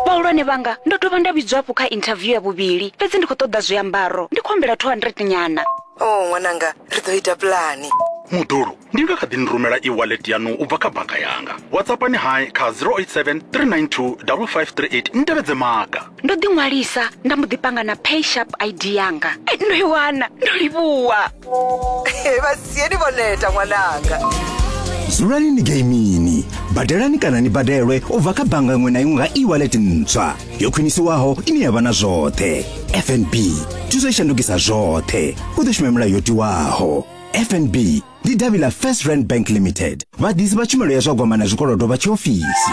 vhahulwane vhanga ndo dovha nda vhidzwa hafhu kha interview ya vhuvhili fhedzi ndi khou ṱoḓa zwiambaro ndi khou humbela 200 nyana o oh, ṅwananga ri ḓo ita pulani muḓulu ndi nga kha ḓi ni rumela e-wallet yanu u bva kha bannga yanga whatsappani hai kha 087 392 5538 ni tevhedze maga ndo ḓi ṅwalisa nda mbo ḓi panga na pay sharp id yanga eh, ndo i wana ndo livhuwa eh, vhasieni vho neta ṅwananga dzulani ni geimini badelani kana ni badelwe u bva kha bannga iṅwe na iṅwe nga e-wallet ntswa yo khwinisiwaho ine ya vha na zwoṱhe fnb thuso i shandukisa zwoṱhe u ḓo shuma milayo yo tiwaho fnb ndi davhi ḽa first rand bank limited vhaḓisi vha tshumelo ya zwa gwama na zwikolodo vha tshiofisi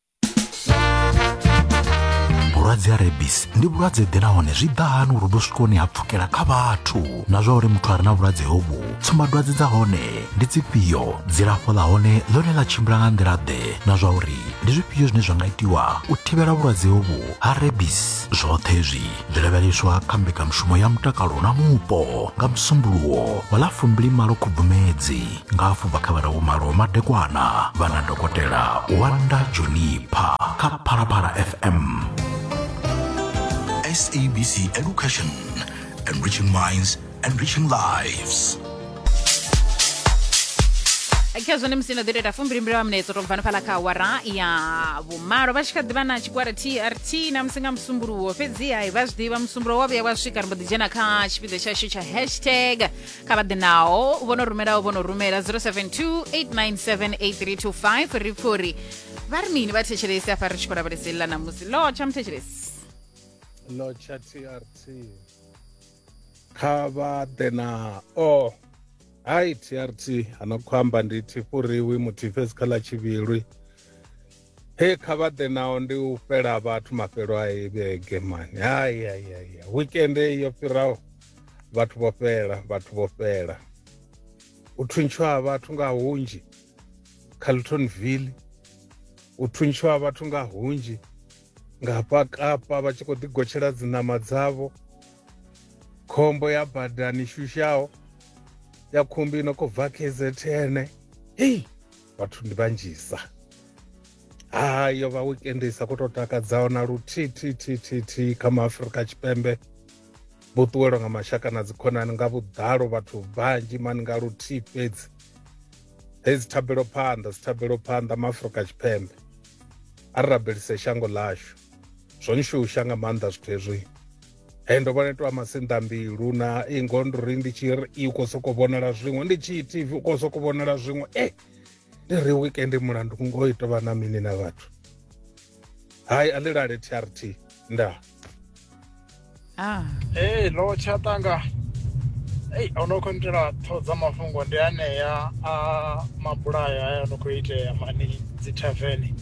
vhulwadze ha rebis ndi vhulwadze ḓe nahone zwi ḓa hani uri vhu swikoni ha pfukela kha vhathu na zwa uri muthu a re na vhulwadze hovhu tsumbadwadze dza hone ndi dzifhio dzilafho ḽa hone ḽone ḽa tshimbila nga nḓila ḓe na zwa uri ndi zwifhio zwine zwa nga itiwa u thivhela vhulwadze hovhu ha rebis zwoṱhe zwi dzi lavheleswa kha mbekanyamushumo ya mutakalo na mupo nga musumbuluwo wa ḽa fumbilimalo khubvumedzi nga afho bva kha vhararu malo madekwana vha na dokotela wanda jonipha kha phalaphala fm SABC Education, enriching minds enriching lives. kha zwone musi no ḓi tou ita fumbilimbili wa minetso to bva no fhala kha awara ya vhumalo vha tshi kha ḓivha na tshigwada trt na musi nga musumbuluwo fhedziha vha zwi ḓivha musumbulo wa vhuya wa swika ri mbo ḓi dzhena kha tshipiḓa tshashu tsha hashtag kha vha ḓi naho vho no rumelaho vho no rumela 0728978325 ri pfha uri vha ri mini vha thetshelesi afha ri tshi khou lavhelesa ḽa ṋamusi lo tsha muthetshelesi Locha TRT. kha vha ḓe na o oh. hai trt ano khou amba ndi thifuriwi muthifesi kha ḽa tshivhilwi he kha vha ḓe nao ndi u fhela vhathu mafhelo a i vhege mani hayayaya wikende yo fhiraho vhathu vho fhela vhathu vho fhela u thuntshiwa ha vhathu nga hunzhi carltonville u thuntshiwa ha vhathu nga hunzhi nga hafha kapa vha tshi khou ḓigotshela dziṋama dzavho khombo ya badani shushaho ya khumbi no khou bva kzn hei vhathu ndi vhanzhisa ha yo vha weekend i sa khou tou takadzaho na luthithithithithi kha maafurika tshipembe vho ṱuwelwa nga mashaka na dzikhonani nga vhuḓalo vhathu vhanzhi mani nga luthihi fhedzi hei dzi thabelo phanḓa dzi thabelo phanḓa maafurika tshipembe a ri rabelise shango ḽashu zwo nshusha nga maanḓa zwithu hezwi he ndo vhona itiwa masinḓa mbilu na ingo ndo ri ndi tshi ri i khou sokou vhonala zwiṅwe ndi tshi tv u khou sokou vhonala zwiṅwe e eh, ndi ri weekend mulandu ngo i tovha na mini na vhathu hai a ḽi lale trt ndaa ah. hey, lo tshatanga ei o no khou nitela ṱhoho dza mafhungo ndi anea a mabulayo aya no khou itea mani dzi tavene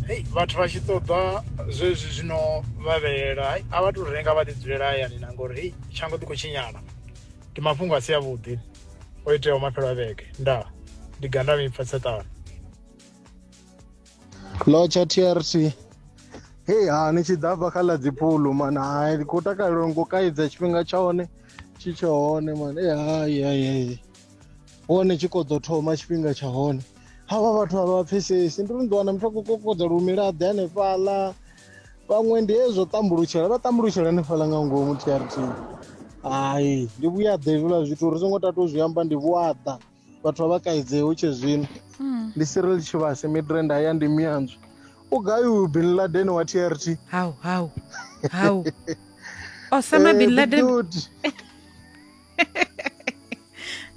hei vhathu vha tshi ṱoḓa zwezwi zwino vhavhelela a vha tou renga vha ḓi dzulela hayani na ngori hei tshango ḓi khou tshinyala ndi mafhungo a si avhuḓi o iteaho maphelo a vhege ndaa ndi ganda mipfa tseṱano lotsha trt hei ha ni tshi ḓa fha kha ḽa dzipulu mana hai ndi khou takalela ngo kaidza tshifhinga tsha hone tshi tsha hone mana e hai hai hai hone tshi koḓo thoma tshifhinga tsha hone havha vhathu a vha pfesesi ndi ri ndi wana muthu a khou kokodza lumila ḓe hanefhaḽa vhaṅwe ndi hezwo tambulutshela vha tambulutshela hanefhaḽa nga ngomu trt hai ndi vhuyaḓa hezwiḽa zwithu ri songo tatu zwi amba ndi vhuaḓa vhathu vha vha kaidze hu tshe zwino hmm. ndi sirel tshivhase midrand haya ndi miyanzwi u gai uyu bin laden wa t r t hau hau hau osama bin eh, laden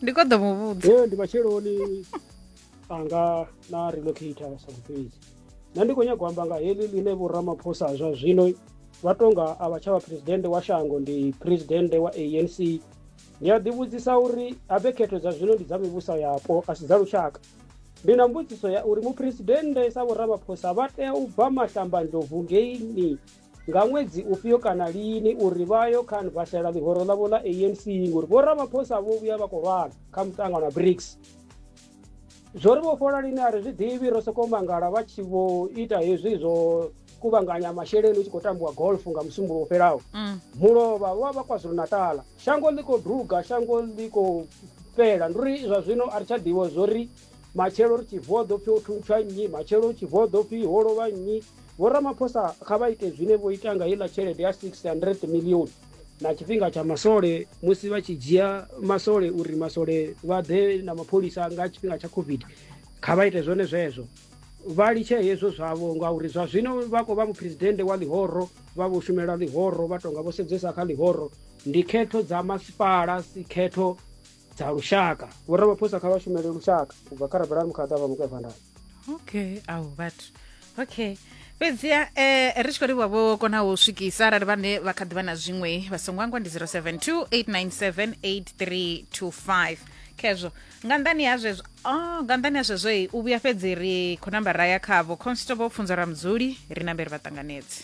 ndi kho ḓo mu vhudza ee ndi matsheloni anga na relocator sa vhufhedzi nṋe ndi khou nyago amba nga heḽi ḽine vhoramaphosa zwa zwino vha tonga a vha tsha vha presidennde wa shango ndi presidennde wa anc Ni a ḓivhudzisa uri habe khetho dza zwino ndi dza mivhuso yapo a si dza lushaka. Ndi na mbudziso ya uri muphuresidennde sa vhoramaphosa vha tea u bva mahlambandlovu ngeini nga ṅwedzi ufhio kana lini uri vha yo khan vhasela ḽihoro ḽavho ḽa ANC ngori vhoramaphosa vho vhuya vha khou lwala kha mutangano wa BRICS. zwo ri vhofhola lini a ri zwi ḓivhi ro sokou mangala vha tshi vho ita hezwi zwo kuvhanganya masheleni hu tshi khou tambiwa golf nga musumbulo u fhelaho mm. mulovha wa vha kwazulu natala shango ḽi khou duga shango ḽi khou fhela ndi uri zwa zwino a ri tsha ḓivha zwo ri matshelo ri tshi vuwa ḓo pfhi o thuntsha nnyi matshelo u tshi vuwa ḓo pfhi ho lovha nnyi vho ramaphosa kha vha ite zwine vho ita nga heiḽa tshelede ya 600 millioni na tshifhinga tsha masole musi vha tshi dzhia masole uri masole vha ḓe na mapholisa nga tshifhinga tsha covid kha vha ite zwone zwezwo vha litshe hezwo zwavho ngauri zwa zwino vha khou vha muphuresidennde wa ḽihoro vha vho shumela ḽihoro vha tonga vho sedzesa kha ḽihoro ndi khetho dza masipala si khetho dza lushaka vho ramaphosa kha vha shumele lushaka u bva kha rabela mukhada vha mukwevhandana okay au vhathu okay fhedziha eh ri tshi khou livhuwa vho kona u swikisa arali vhane vha kha ḓivha na zwiṅwe vha songo angwa ndi 0728978325 khezwo nga nḓani ha zwezwo oh, nga nḓani ha zwezwo i u vhuya fhedzi ri khou namba ra ya khavho constable pfunzo ra mudzuli ri namberi vha ṱanganedzi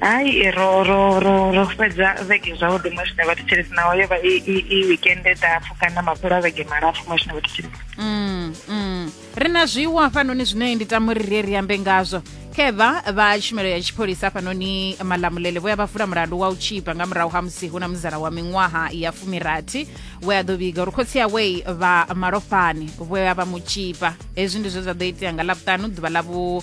hai ro ro ro ro fhedza vhege zwavhuḓi muṅwe zwine vhathetshelesi naho yo vha i wikende ndapfu kana mafhelo a vhege malapfu muṅwe zwine vhathetshelesi mm, mm. ri na zwiwo hafhanoni zwine ndi tama uri ri ri ambe ngazwo kheva vha tshumelo ya tshipholisa hafhanoni malamulele vho ya vha vula mulandu wa u tshipa nga murahu ha musi hu na muzala wa miṅwaha ya fumirathi we a ḓo vhiga uri khotsi yawei vha malofhani vho ya vha mu tshipa hezwi ndi zwe zwa ḓo itea nga ḽavhuṱanu ḓuvha ḽa vhu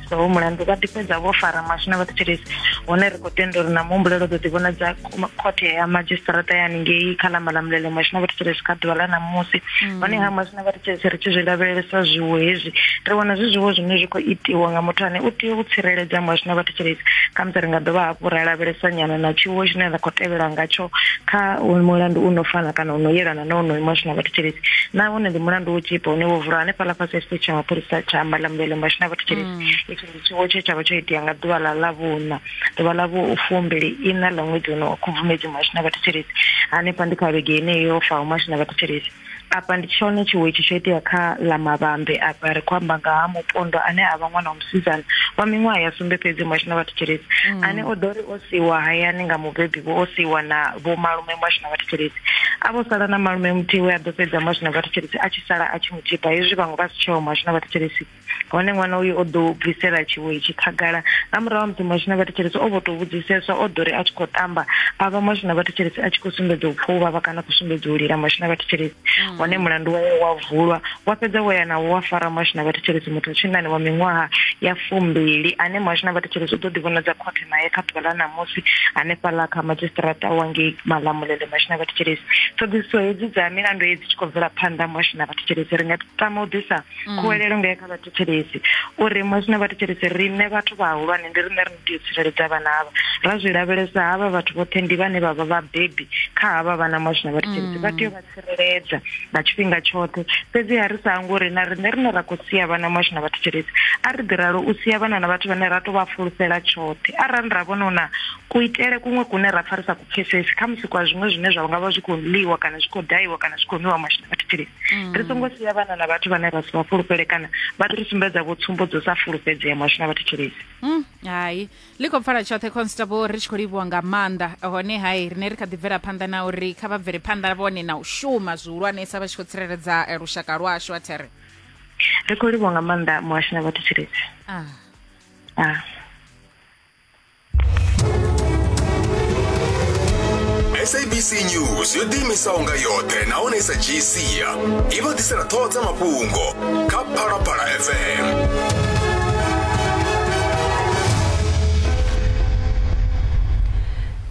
so mulandu vha ḓifhedza vho fara maswi na vhathetshelesi hone ri khou tenda uri na muhumbulelo ḓo ḓivhonadza khothe ya madzhisiṱaraṱa ya haningei kha lamba ḽa mulele maswi na vhathetshelesi kha ḓuvha ḽa ṋamusi mm. hone ha maswi na vhathetshelesi ri tshi zwi lavhelelesa zwiwo hezwi ri vhona zwi zwiwo zwine zwi khou itiwa nga muthu ane u tea u tsireledza maswi na vhathetshelesi khamusi ri nga dovha hafhu ra lavhelesa nyana na tshiwo tshine ra khou tevhela ngatsho kha mulandu u no fana kana u no yelana na onoyo maswi na vhathetshelesi nahone ndi mulandu wo tshipa une wo vulwa hanefhaḽa fhasi ya tshiṱitshi tsha mapholisa tsha amba ḽa mulele nga tshina vhathu tshiri mm. itsho ndi tshiwo tshe tshavha tsho itea nga ḓuvha ḽa ḽa vhuna ḓuvha ḽa vhu fumbili ina ḽa ṅwedzi uno wa khubvumedzi mwa tshina vhathu tshiri hanefha ndi kha vhege ine yo fa uma tshina vhathu tshiri apa ndi tshone tshiwo itshi tsho itea kha ḽa mavhambe apa ri khou amba nga ha mupondo ane a vha ṅwana wa musidzana wa miṅwaha ya sumbe fhedzi mwa tshina vhathu tshiri mm. ane o ḓo ri o siwa hayani nga mubebi vho o siwa na vho malume mwa tshina vhathu tshiri a vho sala na malume muthihi we a ḓo fhedza mwa tshina vhathu tshiri a tshi sala a tshi Tshiḓa hezwi vhaṅwe vha si tsheho muhasho na vhathetshelesi hone ṅwana uyu o ḓo bvisela tshiwo itshi khagala nga murahu ha musi muhasho na vhathetshelesi o vho tou vhudziseswa o ḓo ri a tshi khou tamba a vha muhasho na vhathetshelesi a tshi khou sumbedza u pfa u vhavha kana khou sumbedza u lila muhasho na vhathetshelesi mm. hone mulandu wawe wa vulwa wa fhedza wo ya nawo wa fara muhasho na vhathetshelesi muthu wa tshinnani wa miṅwaha ya fumbili ane muhasho na vhathetshelesi u ḓo ḓivhonadza khothe nae kha ḓuvha ḽa ṋamusi hanefhaḽa kha madzhisiṱiraṱa wa ngei malamulele muhasho na vhathetshelesi ṱhoḓisiso hedzi dza milandu hedzi tshi khou bvela phanḓa muhasho na vhathetshelesi ri nga tama u ḓisa mm. khuwelelo nga kha vhathetshelesi uri muhasho na vhathetshelesi riṋe vhathu vhahulwane ndi riṋe ri tea u tsireledza vhana havha ra zwi lavhelesa havha vhathu vhoṱhe ndi vhane vha vha vhabebi kha havha vhana muhasho na vhathetshelesi vha tea u vha tsireledza nga tshifhinga tshoṱhe fhedziha ri sa hango uri na riṋe rine ra khou sia vhana mashu na vhathetshelesi a ri ḓi ralo u sia vhana na vhathu vhane ra tou vha fulufhela tshoṱhe arali ra vhona una kuitele kuṅwe kune ra pfa ri sa ku pfesesi kha musi kwa zwiṅwe zwine zwa nga vha zwi khou ḽiwa kana zwi khou daiwa kana zwi khou nwiwa mashu na vhathetshelesi mm. ri songo sia vhana na vhathu vhane ra si vha fulufhele kana vha ri sumbedza vho tsumbo dzo sa fulufhedzea mashu na vhathetshelesi mm, hai ḽi khou pfala tshoṱhe constable ri tshi khou livhuwa nga maanḓa hone hai rine ri kha ḓi bvela phanḓa na uri kha vha bvele phanḓa vhone na u shuma zwihulwanesa vha tshi khou tsireledza eh, lushaka lwashu a there ri khou livhuwa nga maanḓa muhashi na vhathu tshiledzi ah. ah. sabc news yo ḓiimisaho nga yoṱhe nahone i sa dzhii sia i vha ḓisela ṱhoho dza mafhungo kha phalaphala fm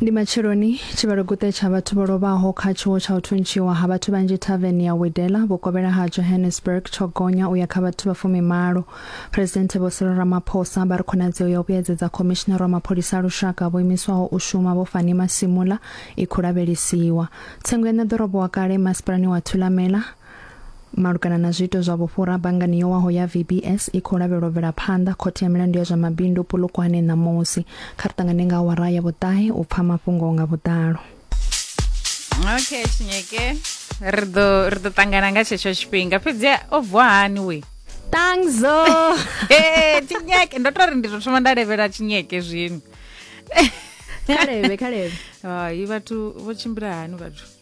ndi matsheloni tshivhaloguṱe tsha vhathu vho lovhaho kha tshiwo tsha u thuntshiwa ha vhathu vhanzhi thaveni ya widela vhukovhela ha johannesburg tsho gonya u ya kha vhathu vha fumimalo phuresidenthe vho siro ramaphosa vha ri khonadzeo ya u vhuyedzedza khomishinara wa mapholisa a lushaka vho imiswaho u shuma vho fani masimula i khou lavhelesiwa tsengo ya ṋeḓorobo wa kale masipalani wa thulamela Malugana na zwiito zwa vhufhura, banngani yo waho ya VBS i khou lavhelwa bvela phanḓa khothe ya milandu ya zwa mabindu Polokwane ṋamusi. Kha ri ṱangane nga awara ya vhuṱahe u pfa mafhungo nga vhuḓalo. okay tshinyeke ri ḓo ri ḓo ṱangana nga tshetsho tshifhinga fhedzi o vuwa hani we Tangzo. Eh, tshinyeke ndo tori ndi tou thoma nda levhela tshinyeke zwino Khalebe, khalebe. hai vhathu vho tshimbila hani vhathu